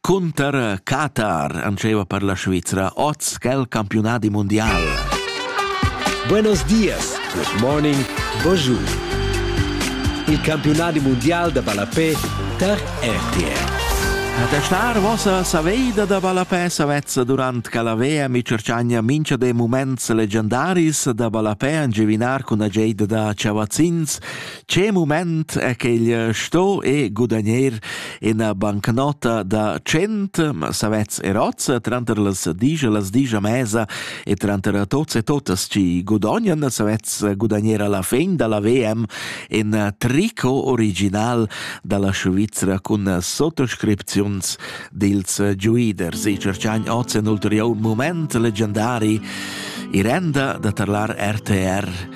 Cunter Qatar antscheva per la Svizra oz quel campiunadi mundial. Buenos dias, good morning, bonjour. Il campiunadi mundial da ballapé tar RTR. Da star vossa saveida da ballapé savezza durant Calavea mi cercagna mincha de muments legendaris da ballapé an givinar cun ageida da chavazzins, Che mument è quel sto e gudagner ina bancnota da 100 ma savets erozza tranter las digia las digia mesa e tranter tots e totas ci gudognan savets gudagner alla fin dalla VM in tricot original dalla Svizra cun sottoscripziuns dils giuiders e cercian oz un ulterior moment leggendari i renda da tarlar RTR